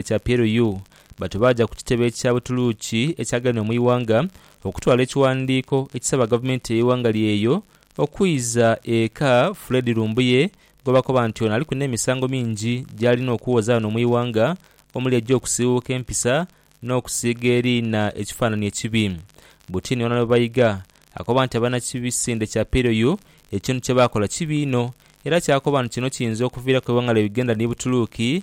ekya PLU batu baaja ku kitebe ekya Butuluuki ekyaganibwa mu ighanga okutwala ekighandiiko ekisaba gavumenti y'eighanga lye eyo okwiiza eka Fred Lumbuye gwebakoba nti ono aliku n'emisango mingi gyalina okuwoza ghano mu ighanga omuli egy'okusiiwuuka empisa n'okusiiga eriina ekifaananhi ekibi Butini Ono Baiga akoba nti abanakibisinde kya PLU ekintu kyebaakola kibi inho era kyakoba nti kino kiyinza okuviiraku eighanga lye Uganda ni Butuluuki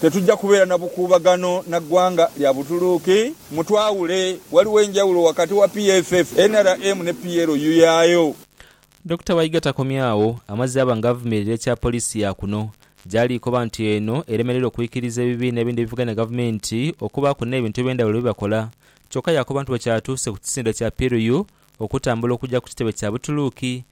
Tetujja kubeera na bukuubagano na ggwanga lya Butuluuki. Mutwawule, waliwo enjawulo wakati wa PFF, nrm ne PLU yaayo. Dokita Waiga takomye agho, amazze aba nga avumirira ekya poliisi ya kuno, gy'ali koba nti eno eremereire okwikiriza ebibiina ebindi ebivuganya gavumenti okubaaku n'ebintu eby'endhawulo bye bakola. Kyokka yaakoba nti bwe kyatuuse ku kisinde kya PLU okutambula okugya ku kitebe kya Butuluuki,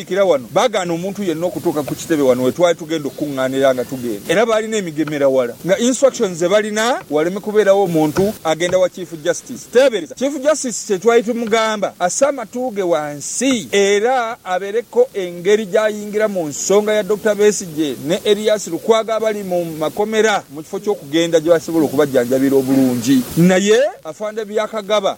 Abasikira wano baagaana omuntu yenna okutuuka ku kitebe wano we twali tugenda okukungaanira nga tugenda, era baalina emigemera wala nga instructions ze balina waleme kubeerawo muntu agenda wa Chief Justice. Teebereza, Chief Justice kye twali tumugamba asse amatu ge wansi era abeereko engeri gy'ayingira mu nsonga ya Dokita Besigye ne Erias Lukwago abali mu makomera mu kifo ky'okugenda gye basobola okubajjanjabira obulungi. Naye Afande Byakagaba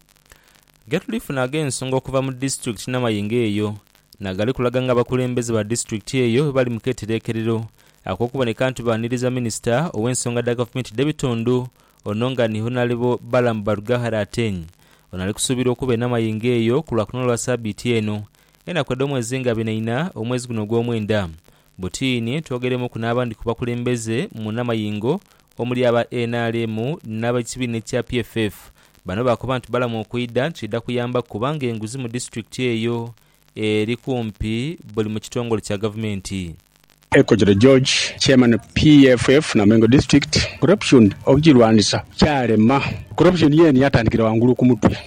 Getulifuna ag'ensonga okuva mu disitulikiti n'amayengo eyo n'agali kulaga nga abakulembeze ba disitulikiti eyo bwebali mu ketereekerero ak'okuboneka nti baaniriza minisita ow'ensonga dha gavumenti dh'ebitundu ono nga ni Honalebo Balaam Barugahare Ateny ono ali kusuubirwa okuba e Namayengo eyo ku Lwakunona lwa sabiiti eno enaku edh'omwezi nga bina ina omwezi guno ogw'omwenda Butiini twogeremuku n'abandi ku bakulembeze munamayingo omuli aba nrm n'ab'ekibiina ekya PFF. Bano baakoba nti balamu okwidha kiidha kuyambaku kubanga enguzi mu disitulikiti eyo eri kumpi buli mu kitongole kya gavumenti. Ekojole George, Chairman PFF Namengo District, Corruption okugirwanisa kyalema. Corruption yeene yatandikira ghangulu ku mutwe.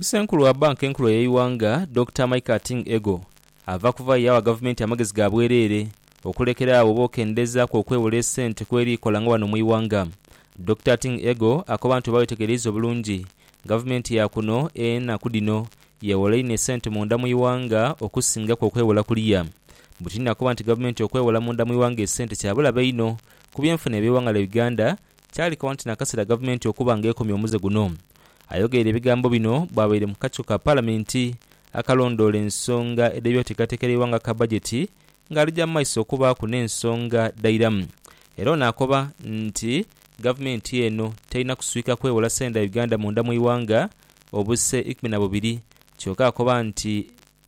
Ssenkulu wa Banka Enkulu ey'eighanga Dokita Mike Ating Ego ava kuvayo yaawa gavumenti amagezi ga bwereere okulekera agho oba okendezaaku okwewola esente kweri ekola nga wano mu ighanga. Dokita Ating Ego akoba nti oba wetegereiza obulungi, gavumenti ya kuno enaku dhino yewola inho esente munda mu ighanga okusingaku okwewola kuliya. Butini nakoba nti gavumenti okwewola munda mu ighanga esente kya bulabe inho ku byenfuna eby'eighanga lya Uganda kyalekawo nti nakasera gavumenti okuba nga ekomya omuze guno. Ayogeire ebigambo bino bwabaire mu kakiiko ka palamenti akalondoola ensonga edh'ebyoteekateeka y'eighanga aka bajeti nga alija mu maiso okubaaku n'ensonga dhairamu era ono akoba nti gavumenti eno terina kuswika kwewola sente dha Uganda munda mu ighanga obuse ikumi na bubiri kyoka akoba nti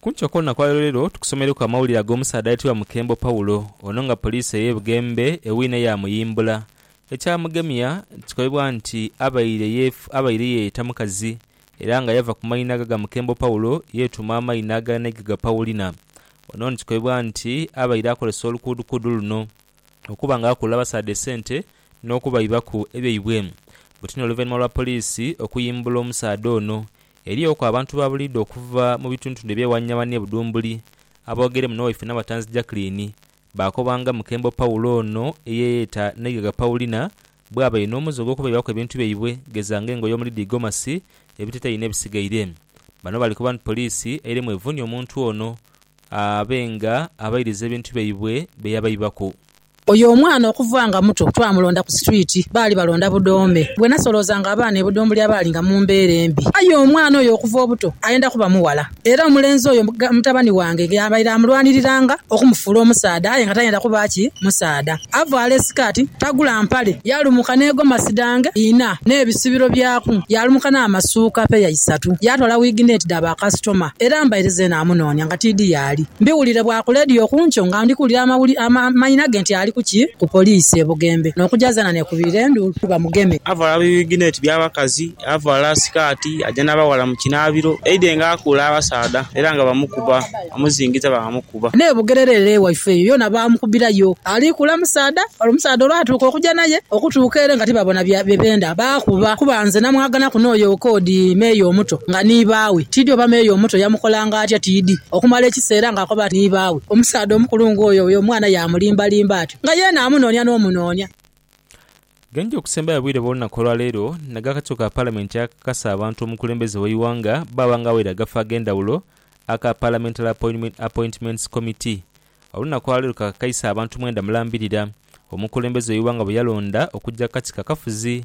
Kunkyo kw'olunaku lwa leero tukusomereku amawulire ag'omusaadha ayetebwa Mukembo Paulo. Ono nga poliisi ey'e Bugembe ewine yaamuyimbula. Ekyamugemya kikobibwa nti abaire abaire yeeyeta mukazi era nga yava ku maina aga ga Mukembo Paulo yeetuuma amaina agala n'eiga ga Paulina. Ono ni kikobibwa nti abaire akozesa olukuudukuudu luno okuba nga akuula abasaadha esente n'okubaibaku ebyaibwe. Butini oluvainhuma lwa poliisi okuyimbula omusaadha ono, eriyoku abantu ba buliidho okuva mu bituntundu ebyewaniawani e Budhumbuli aboogeremu n'owaife Nabatanzi Jacqueline baakoba nga Mukembo Paulo ono eyeeyeta Naigaga Paulina bw'abaire n'omuze ogw'okubaibaku ebintu byaibwe geza nga engoye omuli dhi gomasi, ebiteteeyi n'ebisigaire. Bano bali koba nti poliisi eiremu evuunhie omuntu ono abe nga abairiza ebintu byaibwe bye yabaibaku. Oyo omwana okuva nga muto twamulonda ku situwiti, baali balonda budoome. Bwe nasoloozanga abaana e Budhumbulya baali nga mu mbeera embi. Aye omwana oyo okuva obuto ayenda kuba mughala. Era omulenzi oyo mutabani wange yaabaire amulwaniriranga okumufuula omusaadha aye nga tayenda kuba ki musaadha. Avaala esikaati, tagula mpale. Yaalumuka n'egomasi dhange inha n'ebisibiro byaku. Yaalumuka n'amasuuka peya isatu. Yaatwala wiigi n'eti dha bakasitoma. Era mbaire zeena amunoonia. Rtd yaali. Mbiwulire bwa ku leediyo kunkyo nga ndi kuwulira amawuli amanhina ge nti ali ku ki ku poliisi e Bugembe n'okugya zeena neekubirira enduulu bamugeme. Avala bibigineti bya bakazi, avala sikaati, aja n'abaghala mu kinaabiro. Aidhe nga akuula abasaadha era nga bamukuba, bamuzingiza baamukuba. N'e Bugerere ere ewaife eyo yoona baamukubirayo. Ali kuula musaadha ole, omusaadha olwatuuka okugya naye okutuuka ere nga tibabona bye beenda, baakuba kuba nze namwaganaku n'oyo Koodi, meeya omuto nga ni baawe. Tiidhi oba meeya omuto yamukolanga. atyo tiidhi okumala ekiseera ng'akoba nti ni baawe. Omusaadha omukulu ng'oyo oyo omwana yaamulimbalimba atyo nga yeena amunoonia n'omunoonia. Geenje okusembayo obwire bw'olunaku olwaleero nag'akakiiko ka Palamenti akakakasa abantu omukulembeze w'eighanga bwaba nga awaire agafo ag'endhawulo aka Parliamentary Appointments Committee. Olunaku olwaleero kakakaisa abantu mwenda mulambirira omukulembeze w'eighanga bweyalonda okujja kukakiko akafuzi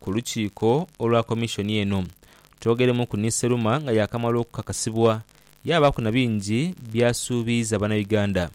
Ku lukiiko olwa komishoni eno, twogeremuku ni Seruma nga yaakamala okukakasibwa, yaabaaku na bingi by'asuubiiza Bannayuganda.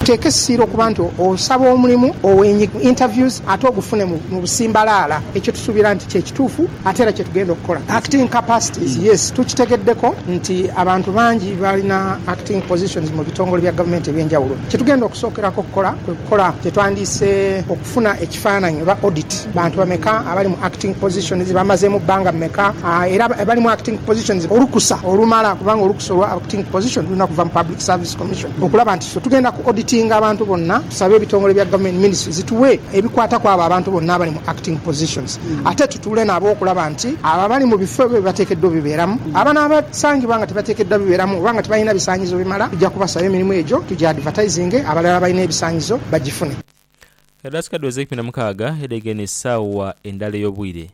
Teeka essira okuba nti osaba omulimu owenyigira mu interviews ate ogufune mu busimbalaala. Ekyo tusuubira nti kye kituufu ate era kye tugenda okukola. Acting capacities, Yes, tukitegeddeko nti abantu bangi balina acting positions mu bitongole bya gavumenti eby'enjawulo. Kye tugenda okusookerako okukola kwe kukola kye twandiise. Funa ekifaananyi oba audit. Bantu bameka abali mu acting positions? Bamazeemu bbanga mmeka? Era abali mu acting positions olukusa olumala? Kubanga olukusa olwa acting position lulina kuva mu Public Service Commission. Okulaba nti ffe tugenda ku auditinga abantu bonna, tusabe ebitongole bya government, ministry, zituwe ebikwata ku abo abantu bonna abali mu acting positions. Ate tutuule nabo okulaba nti abo abali mu bifo bye bateekeddwa obibeeramu, abanaaba sangibwa nga tebateekeddwa bibeeramu oba nga tebalina bisaanyizo bimala, tujja kubasaba emirimu egyo, tugi advertisinge, abalala abalina ebisaanyizo bagifune. Edhasika dhiweza eikumi na mukaaga edhaighe n'esaawa endala ey'obwire.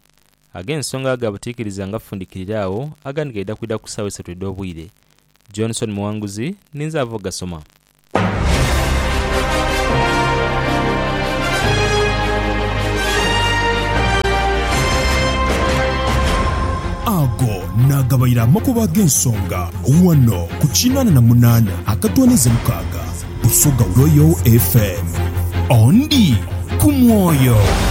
Ag'ensonga ga butiikiriza nga fundikirira agho, agandi gaidha kwidha ku saawa isatu edh'obwire. Johnson Muwanguzi, ninze ava ogasoma. Ago naagabaire amakubo ag'ensonga ghano ku kinaana na munaana akatoonaiza mukaaga. Busoga Royal FM. Ondi ku mwoyo.